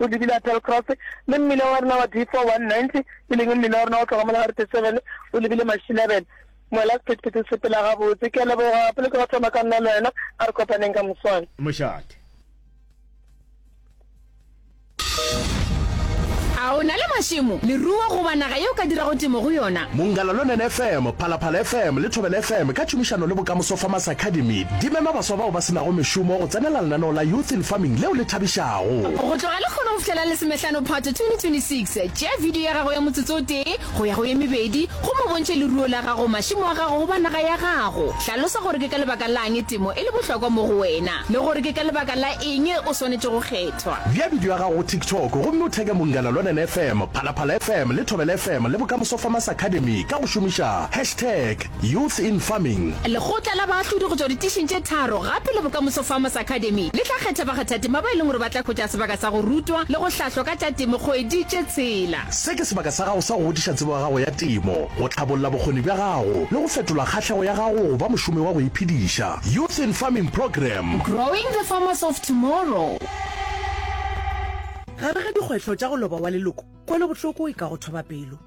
o lebile Applecross, le mmila wa rena wa D419, e leng mmila wa rena wa go tloga mo la Route 7, o lebile Mašilabele. Mola sephethephethe se sepela gabotse. Ke a leboga, pele ke go thoma ka nna le wena, a re kopaneng ka moswane. Mošate. A o na le mašemo, leruo goba naga ye o ka dirago temo go yona? Mongalalonene FM, Phalaphala FM le Thobela FM ka tšhomišano le Bokamoso Farmers Academy di mema baswa bao ba se nago mešomo go tsenela lenaneo la Youth in Farming leo le thabišago. a go. Go tloga lehono go fihlela Lesomehlano Phato 2026, tšea bidio ya gago ya motsotso o tee go ya go ye mebedi gomme o bontšhe leruo la gago, mašemo a gago goba naga ya gago. Hlalosa gore ke ka lebaka la'ng temo e le bohlokwa mo go wena le gore ke ka lebaka la eng o swanetše go kgethwa. Bea bidio ya gago go TikTok gomme o theke Mongana Lonene FM, Phalaphala FM le Thobela FM le Bokamoso Farmers Academy ka go šomiša hashtag. Youth in Farming. Lekgotla la baahlodi go tšwa ditišing tše tharo gape le Bokamoso Farmers Academy le tla kgetha bakgathatema ba e leng gore ba tla hwetša sebaka sa go rutwa le go hlahlwa ka tša temo kgwedi tše tshela. Se ke sebaka sa gago sa go godiša tsebo ya gago ya temo, go tlhabolla bokgoni bja gago le go fetola kgahlego ya gago go ba mošomi wa go iphediša. Youth in Farming Program. Growing the Farmers of Tomorrow. Gare ga dikgwetlho tša go loba wa leloko, kwelobohloko e ka go thoba pelo.